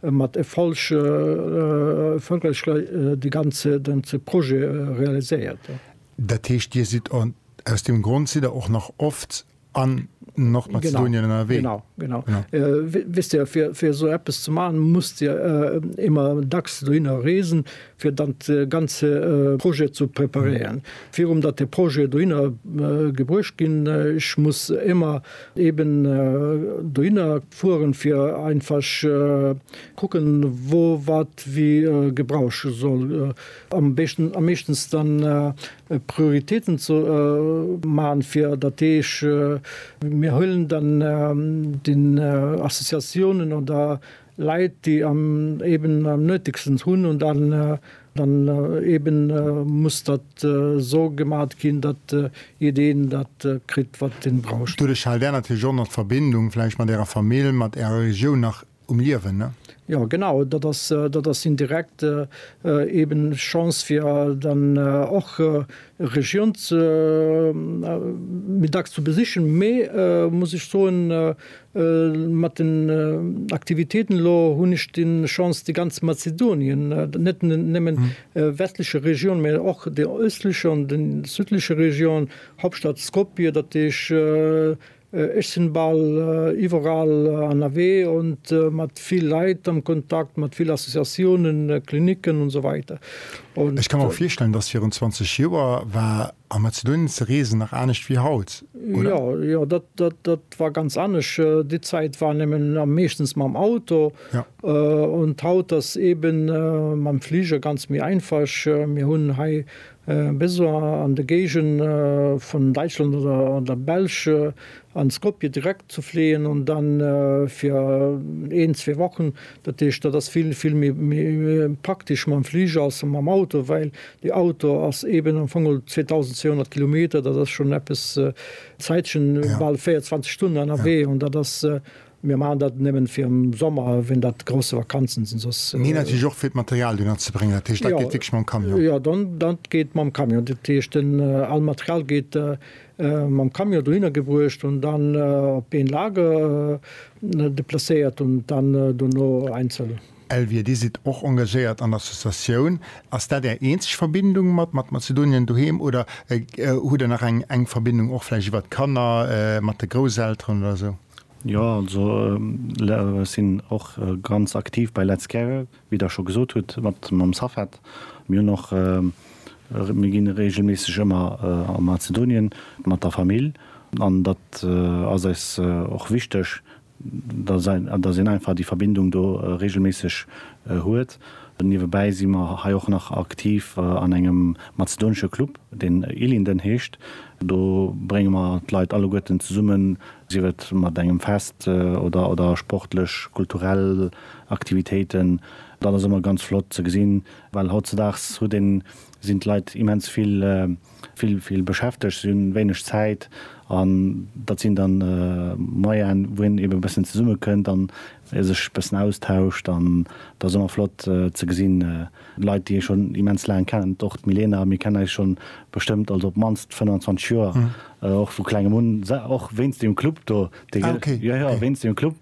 e mat e falsche Fënkelcher de ganze ganze Projet realiséiert. Dat heescht, Dir sidd en, aus deem Grond sidd Der och nach oft an Nordmazedonien ënnerwee? Genau, genau, genau. Wësst Dir, fir, fir esou eppes ze maachen, musst Dir ëmmer dacks dohinner reesen, fir dann de ganze Projet ze preparéieren, virum datt de Projet dohinner gebruecht ginn. Ech muss émmer eben dohinner fueren, fir einfasch kucken, wou wat wéi gebraucht soll am beschten, am meeschtens dann Prioritéiten ze man, fir datt deeg mir huelen dann den Associatiounen oder. Leit déi eben am nötigstens hunn un dann dann eben muss dat so gemat ginn dat jideen dat kritt wat den brausch. Doduerch haalt Är natierlech och nach d'Verbindung vläicht mat Ärer Famill, mat Ärer Regioun nach um Liewen, ne? Jo genau, dat ass dat ass indirekt eben Chance fir dann och Regioun ze méi dacks ze besichen, mee muss ech soen Mat den Aktivitéiten elo hunn ech déi Chance, déi ganz Mazedonien, net nëmmen westleche Region, mä och déi ëstleche an déi südleche Region, Hauptstadt Skopje, dat heesch ech sinn bal iwwerall ënnerwee an mat vill Leit am Kontakt, mat vill Associatiounen, Klinicken, usw. Ech ka mer och virstellen, datt virun 20 Joer war A Mazedonien ze reesen nach anescht wéi haut, oder? Jo, jo, dat, dat, dat war ganz anescht. Déi Zäit war nëmmen a meeschtens mam Auto. Ja. Und haut ass eben mam Fliger ganz méi einfasch. Mir hunn hei bis an de Géigend vun Däitschland oder an der Belsch an Skopje direkt ze fléien, und dann fir een, zwee Wochen Dat heescht, dat ass vill, vill méi praktesch mam Fliger als mam Auto, well dee Auto ass eeben am Fong 2.200 Kilometer, dat ass schonn eppes Zäitchen, bal 24 Stunden ënnerwee. An dat ass, mir maachen dat nëmmen fir am Sommer, ween dat grousse Vakanzen sinn, soss. Mee natierlech och fir d'Material dunner ze bréngen, dat heescht, dat geet wierklech mam Camion? Jo, dat geet mam Camion. Dat heescht, all Material geet mam Camion dohinner gebruecht und dann op een Lager deplacéiert und dann dono einzel. Elvire, Dir sidd och engagéiert an Associatioun. Ass dat Är eenzeg Verbindung mat mat Mazedonien doheem oder hutt Der nach eng eng Verbindung och vläicht iwwer d'Kanner mat de Grousselteren oder esou? Jo, also sinn och ganz aktiv bei Let's Care. Wéi Der scho gesot hutt, mat mam SAFED, mir hunn och, mir gi reegelméisseg ëmmer a Mazedonien mat der Famill an dat ass eis och wichteg, datt een einfach déi Verbindung do reegelméisseg huet. Niewebäi si mer hei och nach aktiv an engem mazedonesche Club, deen Ilinden heescht. Do brénge mer d'Leit alleguerten zesummen, sief et mat engem Fest oder sportlech, kulturell. Aktivitéiten, dat ass ëmmer ganz flott ze gesinn, well hautzedaags huet een, sinn d'Leit immens vill, vill, vill beschäftegt, si hunn wéineg Zäit an dat sinn dann Moyene wou een eben e bëssen zesummekënnt an sech e bëssen austauscht an dat ass ëmmer flott ze gesinn, Leit déi ee schonn immens laang kennen, och d'Milena, mir kennen eis schonn bestëmmt, also op d'mannst 25 Joer, och vu klengem un, och wéinst deem Club do, dee gëll, jo jo, wéinst deem Club,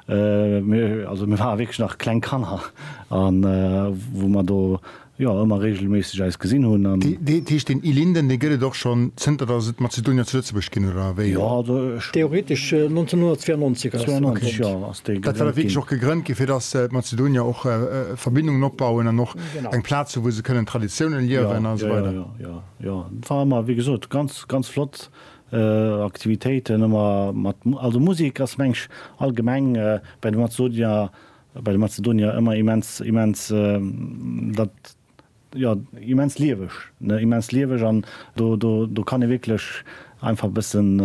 mir, also mir ware wierklech nach kleng Kanner an wou mer do, jo, ëmmer regelméisseg eis gesinn hunn an. Dat heescht deen Ilinden, dee gëtt et och schonn zënter datt et Mazedonier zu Lëtzebuerg ginn, oder wéi? Jo, also ech. Theoretesch 1992 ass. 92, jo. Dat war da wierklech och gegrënnt ginn, fir datt d'Mazedonier och Verbindungen opbauen an och eng Plaz hunn, wou se kënnen Traditiounen liewen a esou weider. Jo, jo, et war ëmmer, wéi gesot, ganz, ganz flott Aktivitéiten ëmmer mat, also Musek ass mensch allgemeng bei de Mazedonier, bei de Mazedonier ëmmer immens, immens dat, jo immens lieweg ne immens lieweg an do do do kann ee wierklech einfach bëssen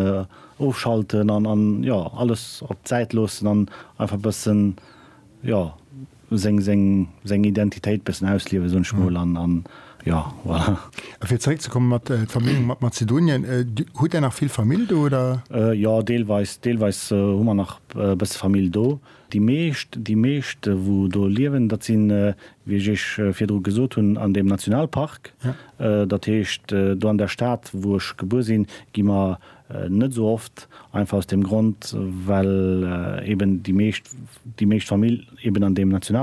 ofschalten an an jo alles op d'Säit loossen an einfach bëssen jo seng seng seng Identitéit bëssen ausliewen soen ech mol an an jo voilà. A fir zeréck ze kommen mat d'Verbindung mat Mazedonien, hutt där nach vill Famill do oder? Jo deelweis deelweis hu mer nach bësse Famill do. Déi meescht, déi meescht wou do liewen, dat sinn, wéi ech Iech virdru gesot hunn, an deem Nationalpark. Dat heescht, do an der Stad wou ech gebuer sinn, gi mer net esou oft, einfach aus deem Grond, well eeben déi meescht, déi meescht Famill eeben an deem Nationalpark.